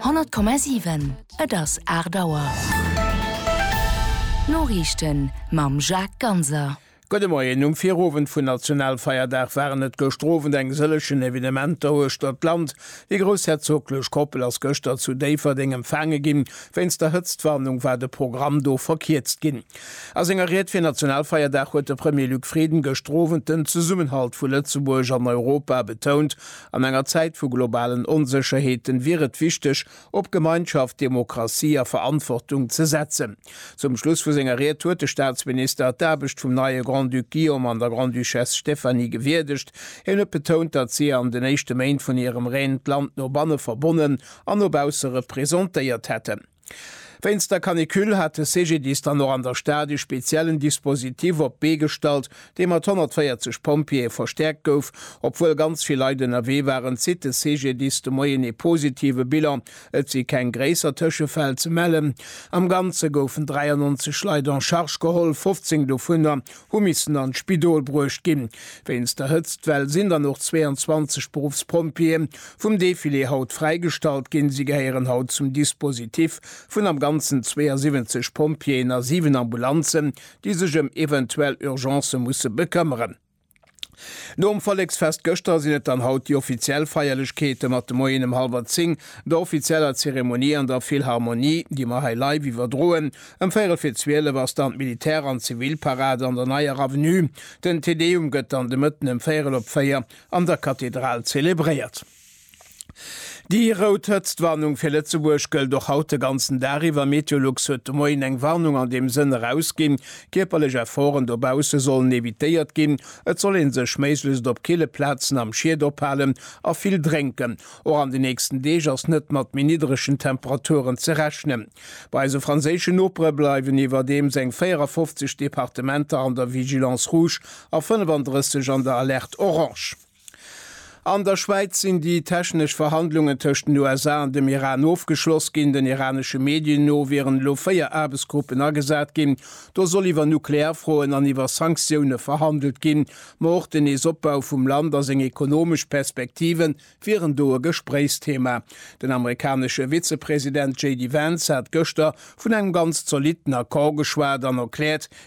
100,7 Et ass 8 Auer. D'Noriichten mam Jacques Ganser. Gudde Moien. Um Virowend vun Nationalfeierdag waren et gëschter Owend eng sëllegen Evenementer uechter d'Land. Déi groussherzoglech Koppel ass gëschter zu Déifferdeng empfaange ginn. Wéinst der Hëtztwarnung war de Programm do verkierzt ginn. A senger Ried fir Nationalfeierdag huet de Premier Luc Frieden gëschter Owend den Zesummenhalt vu Lëtzebuerg an Europa betount An enger Zäit vu globalen Onsécherheeten wier et wichteg, op Gemeinschaft, Demokratie a Verantwortung ze setzen. Zum Schluss vu senger Ried huet de Staatsminister d'Aarbecht vum neie Grand-Duc Guillaume an der Grande-Duchesse Stéphanie gewierdegt. Hien huet betount, datt si an den éischte Méint vun hirem Règne d'Land no banne verbonnen an no bausse representéiert hätten. Wéinst der Canicule hat de CGDIS dann och an der Stad e speziellen Dispositif op d'Bee gestallt, dee mat 140 Pompjeeë verstäerkt gouf. Obwuel ganz vill Leit ënnerwee waren, zitt de CGDIS de Moien ee positive Bilan. Et si keng gréisser Tëschefäll ze mellen. Am Ganze goufen 93 Leit en charge geholl, 15 dovunner hu missen an d'Spidol bruecht ginn, wéinst der Hëtztwell sinn dann och 22 Beruffspompjeeë vum Defilé haut fräigestallt ginn. Si gehéieren haut zum Dispositif vun am Ganzen 72 Pompjeeën a 7 Ambulanzen, déi sech ëm eventuell Urgencë musse bekëmmeren. Nom Volleksfest gëschter sinn et dann haut déi offiziell Feierlechkeete mat de Moien em hallwer 10, der offizieller Zeremonie an der Philharmonie, déi mer hei live iwwerdroen. Em véirel fir 12 ass dann d'Militär an Zivilparade an der Neier Avenue. Den Te Deum gëtt dann de Mëtten em véirel op 4 an der Kathedral zelebréiert. Déi rout Hëtztwarnung fir Lëtzebuerg gëllt och haut de ganzen Dag iwwer. Meteolux huet de Moien eng Warnung an deem Sënn erausginn. Kierperlech Efforten dobausse sollen evitéiert ginn. Et soll ee sech méiglechst op kille Plazen am Schiet ophalen a vill drénken. Och an de nächsten Deeg ass net mat méi niddregen Temperaturen ze rechnen. Bei eise franséische Nopere bleiwen iwwerdeems eng 54 Departementer an der Vigilance rouge a 35 an der Alerte orange. An der Schwäiz sinn déi technesch Verhandlungen tëscht den USA an dem Iran ofgeschloss ginn. Den iranesche Medien no wieren elo véier Aarbechtsgruppen agesat ginn. Do soll iwwer nuklear Froen an iwwer Sanktioune verhandelt ginn. Ma och den Neesopbau vum Land a seng ekonomesch Perspektive wieren do e Gespréichsthema. Den amerikanesche Vizepresident JD Vance hat gëschter vun engem ganz zolitten Accord geschwat an erkläert,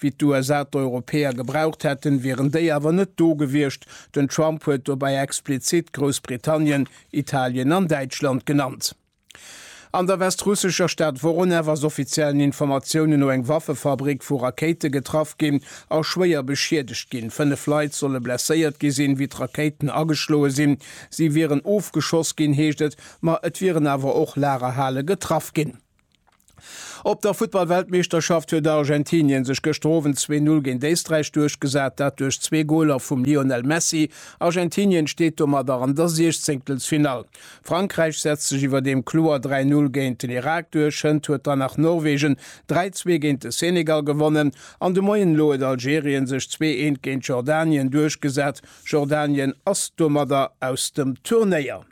Wéi d'USA d'Europäer gebraucht hätten, wieren déi awer net do gewiescht. Den Trump huet dobäi explizitt Groussbritannien, Italien an Däitschland genannt. An der westrussescher Stad Woronew ass offiziellen Informatiounen no eng Waffefabrik vu Rakéite getraff ginn a schwéier beschiedegt ginn. Fënnef Leit solle blesséiert gi sinn, wéi d'Rakéiten ageschloe sinn. Si wieren ofgeschoss ginn, heescht et, ma et wieren awer och Lagerhale getraff ginn. Op der Futtballweltmeeschterschaft huet Argentinien sech gëschter Owend zwee Null géint Éisträich duerchgesat, dat duerch zwee Goler vum Lionel Messi. Argentinien steet domadder an der Siechzéngtelsfinall. Frankräich setzt sech iwwerdeem kloer dräi Null géint den Irak duerch. Hënt huet dann nach Norwegen dräi zwee géint de Senegal gewonnen. An de Moien elo huet Algerien sech zwee eent géint Jordanien duerchgesat. Jordanien ass domadder aus dem Turnéier.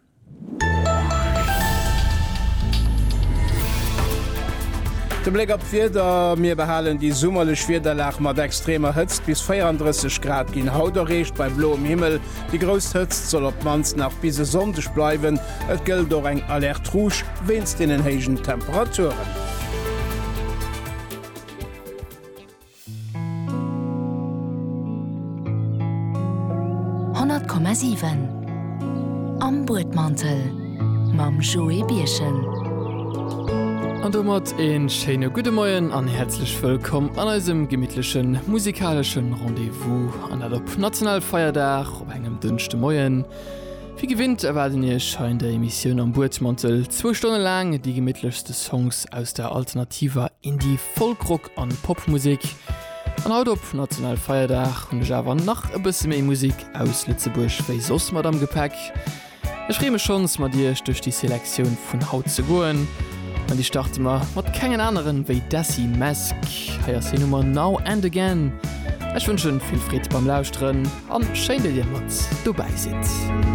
De Bléck op d'Wieder, Mir behalen déi summerlech Wiederlag mat extremer Hëtzt. Bis 34 Grad ginn haut erreecht bei bloem Himmel. Déi grouss Hëtzt soll op d'mannst nach bis e Sonndeg bleiwen. Et gëllt och eng Alerte rouge wéinst deenen héijen Temperaturen. 100,7 Am Buedmantel mam Joé Birchen. An domat e schéine gudde Moien an häerzlech wëllkomm an eisem gemittlechen musikaleschen Rendez-vous, an dat op Nationalfeierdag op engem Dënschdemoien. Wéi gewinnt erwaarden Iech hei an der Emissioun Am Buedmantel zwou Stonne laang déi gemittlechste Songs aus der alternativer Indie-Folk-Rock. an Popmusik. An haut op national Feierdag hunn ech awer nach e bësse méi Musik aus Lëtzebuerg wéi soss mat am Gepäck. Ech freeë mech schonns mat iech duerch déi Selektioun vun haut ze goen an déi starte mer mat kengen aneren wéi Desi Mesk. Hei ass hir Nummer Now and Again. Ech wënschen vill Freed beim Lauschteren an schéin dat dir mat dobäi sidd.